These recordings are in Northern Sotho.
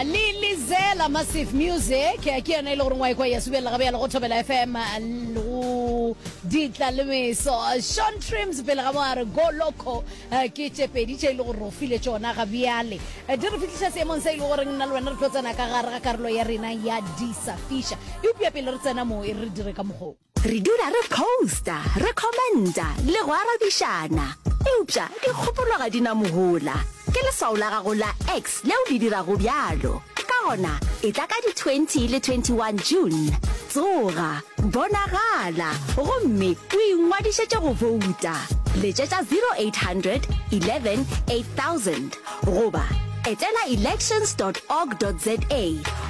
le lizela massive music ke yona e le goreng wa ekwa ya subelela gabe yalo go thobela fm go ditla le meso sean trims pele ga mo a re go loco Eh, ke tše pedi tše e le gore o file tšona ga bjale Eh, di re fitlhisa seemong se e le goreng nna le wena re tlo tsena ka gare ga karolo ya rena ya disafiša eupša pele re tsena moo e re re dire ka mokgong Re dula re posta, re commenta le go arabišana. Eupša dikgopolo ga di na mohola. Ke leswao la gago la X leo le dirago bjalo. Ka gona, etla ka di 20 le 21 June. Tsoga, bonagala, gomme o ingwadišetše go bouta. Letšetša 0800 11 8000 goba etela elections dot org dot za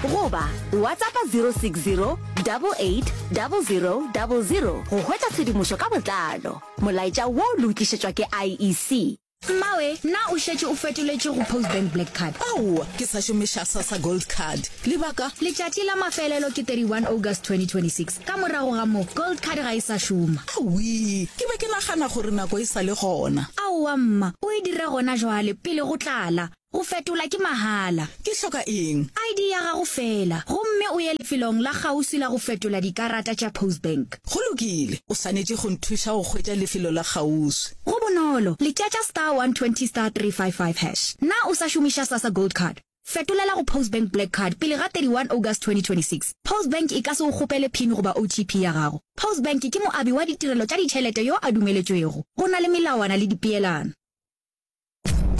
goba WhatsAppa 060 double eight double zero double zero go hwetša tshedimošo ka botlalo. Molaetša wo le o tlišetšwa ke IEC. Mmawe, na o šetše o fetoletše go Postbank Black Card? Aowa, ke sa šomiša Sassa Gold Card. Lebaka? Letšatši la mafelelo ke 31 August 2026. Ka morago ga moo, Gold Card ga e sa šoma. Awii, ke be ke nagana gore nako e sa le gona. Aowa mma, o e dira gona jwale, pele go tlala. Go fetola ke mahala. Ke hloka eng? ID ya gago feela, gomme o ye lefelong la kgauswi la go fetola dikarata tša Postbank. Go lokile. O swanetše go nthuša go hwetša lefelo la kgauswi. Go bonolo, letšatša star 120 star 355 hash. Na o sa šomiša Sasa Gold Card? Fetolela go Postbank Black Card pele ga 31 August 2026. Postbank e ka se go kgopele pin goba OTP ya gago. Postbank ke moabi wa ditirelo tša ditšhelete yo a dumeletšwego. Go na le melawana le dipeelano.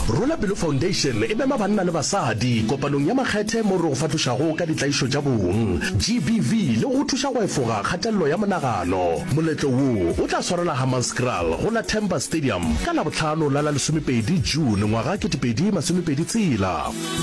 Rula Pelo Foundation e mema banna le basadi kopanong ya makgethe mo re go fahlošago ka ditlaišo tša bong, GBV, le go go thuša go efoga kgatelelo ya monagano. Moletlo wo o tla swarela Hammanskraal go la Temba Stadium ka Labohlano la la lesomepedi June ngwaga 2026.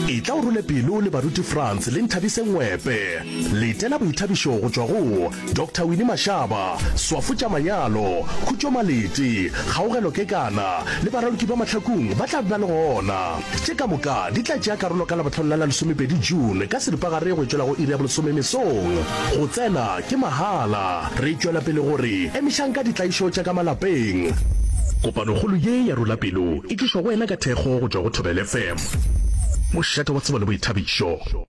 Etla o rule pelo le baruti Frans le Nthabise Ngwepe. Letela boithabišo go tšwa go. Doctor Winnie Mashaba, Swafo tša Manyalo, Khutšo Malete, Kgaogelo Kekana le Baraloki ba Mahlakung ba tla be ba le gona. Tše ka moka di tla tšea karolo ka Labohlano la la lesomepedi June ka seripagare go tšwela go iri ya bolesome mesong. Go tsena ke mahala. Re tšwela pele go re emišang ka ditlaišo tša ka malapeng. Kopanokgolo ye ya Rula Pelo e tlišwa go wena ka thekgo go tšwa go Thobela FM, mošate wa tsebo le boithabišo.